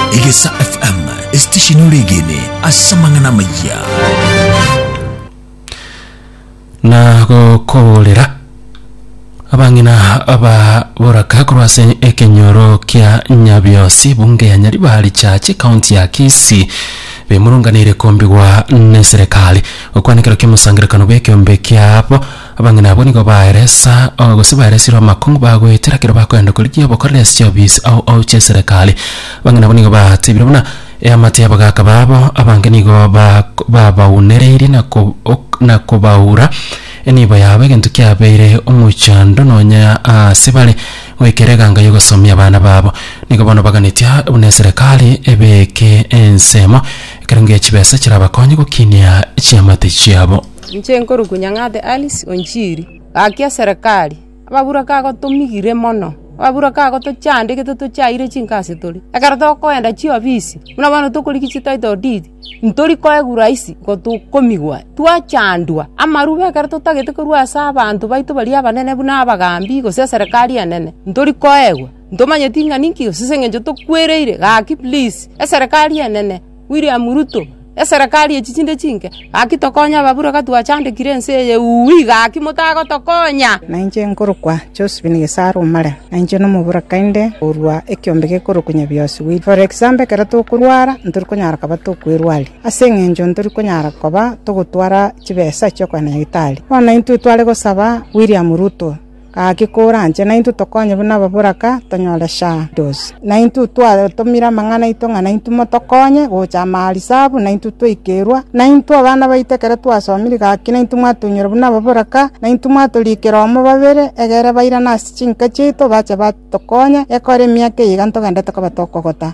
Egesa FM, esitesheni ore egene ase amang'ana amaya. na gokoborera abang'ina aba boraka korwa ase ekenyoro kia nyabiosi bunge ya nyaribari chache kaunti ya kisi bemurunganire kombigwa neserekari gokwana ekero kiamosangerekano bw'ekeombe kiabo Abang'ina abwo nigo baeresa, o, gose baeresirwe amakong'u bagoetera ekero bakoenda korigia obokoreri ase chiofisi ao ao chi'eserekari. Abang'ina abwo nigo batebire buna eamate y'abagaaka babo abange nigo bak babaunereirie na ko ok na kobaura enibo yabo, egento kiabeire omochando nonya aase bare, goika ere eganga y'ogosomia abana babo. Nigo bono baganetie buna eserekari ebeeke ensemo ekerengo ye chibesa chirabakonye gokinia chiamate chiabo. Inche nkorokwa Nyang'ate Alice Onchiri, gaki eserekari, ababuraka igo tomigire mono, ababuraka igo tochandegete mono tochaeire chingasi tore, ekero tokoenda chiofisi buna bono tokorigia chi title deed, ntori koegwa rahisi igo tokomigwa, twachandwa amarube ekero totagete korwa ase abanto baito baria abanene buna abagambi gose eserekari enene, ntori koegwa, ntomanyeti ng'a ninki gose ase eng'encho tokwereire, gaki please eserekari enene. William Ruto, eserekari echi chinde chinke, gaki tokonye ababura iga twachandekire ense eye uui, gaki motagotokonya. Nainche nkorokwa Josephine Gesaro Omare, na inche nomoboraka inde korwa ekiombe gekorokwa Nyabiosi Wheat. For example ekero tokorwara ntori konyara koba tokwerwari, ase eng'encho ntori konyara koba togotwara chibesa chi'okogenda nyagitari. Bono intwe tware gosaba William Ruto, Gaki koranche, naintwe tokonye buna ababoraka, tonyore shadows. Naintwe twatomire amang'ana aito ng'a naintwe motokonye gocha amaarisabu, naintwe twaikerwa, naintwe abana baito ekero twasomire gaki naintwe mwatoinyora buna ababoraka, naintwe mwatorikera omo babere, egere bairane ase chinka chiaito, bache batokonye, ekore emiaka eye iga ntogendete koba tokogota.